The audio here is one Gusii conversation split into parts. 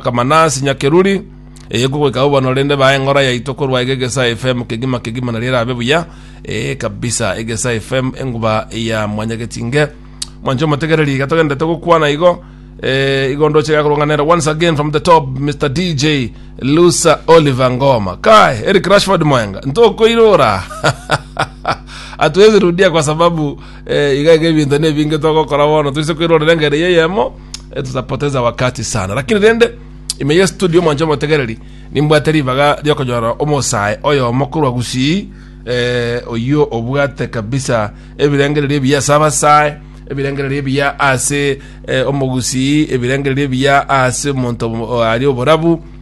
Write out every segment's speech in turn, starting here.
Kamanasi Nyakeruri, eh, gogoika au bono rende bae engora yaito korwa iga Egesae FM kegima kegima naria erabe buya eh, kabisa Egesae FM enguba ya mwanyagetinge mwanche omotegereri iga togendete gokwana igo eh, igo ndoche iga korong'anera once again from the top Mr DJ Lusa Oliver Ngoma kai Eric Rashford Mwenga ntokoirora hatuwezi rudia kwa sababu eh, iga iga ebinto nebinge togokora bono twise koirorera engere yeyemo eh, tutapoteza wakati sana lakini rende ime ya studio mwancho motegereri nimbwate ribaga riokonyora omosae oyomo korwa gusii eh, oyio obwate kabisa ebirengererio ebiya ase abasae ebirengererio ebiya ase eh, omogusii ebirengererio ebiya ase omonto omo- ari oborabu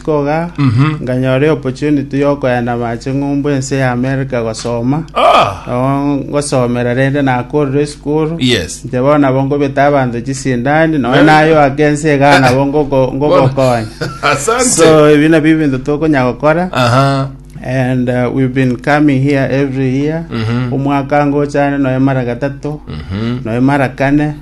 Koga nkanyora eopportunity yokoenda amache ng'umbu ense ya America gosoma. Ah! Nabo ngosomera rende nakorire esukuru. Yes. Inche bono nabo nkobeta abanto chisindani, nonya Very naye good. oake ense iga nabo ngoko- ngogokonya. Asante. So ebi nabio ebinto tokonya gokora. Aha. and uh, we've been coming here every year Mhm. omwaka ngochane noyo mara gatato Mhm. noyo mara kane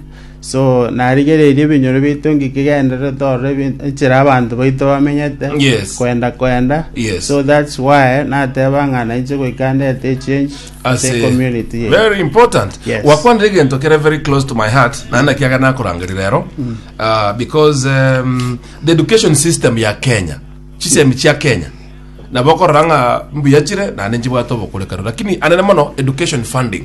So narigererie ebinyoro biaito ngikigenderere torore ebi- enchera abanto baito bamenyete Yes. kwenda kwenda Yes. so that's why nateba ng'a nainche goika ndete echange ase Ase- community yaitu. very important Yes. wakwanire egento kere very close to my heart naye nakiaga nakorangeri rero Ah, because um, the education system ya kenya chisemi chia kenya nabo okorora ng'a mbuya chire naende nchibwate obokorekano lakini anene mono education funding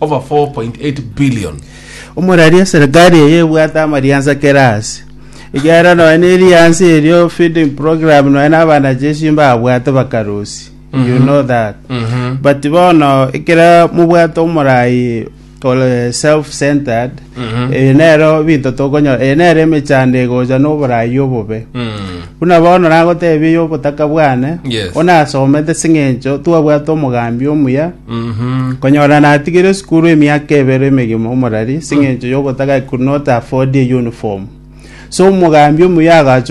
over 4.8 billion. Omoraria serikali eye ebwate amariansa kera ase, ekiagera nonya na eriansa erio feeding program nonya na abanajeshi mbabwate bakarosi. You know that. But bono ekero mobwate omorai ore self-centered, Eye nero binto tokonyora, eye nero emechando egocha n'oboraai obobe. Buna bono nagotebia ey'obotaka bwane, Yes. onasomete sing'encho twabwate omogambi omuya, konyora natigire esukuru emiaka ebere emegima omorari sing'encho y'ogotaka I could not afford a uniform. So omogambi omuya agacha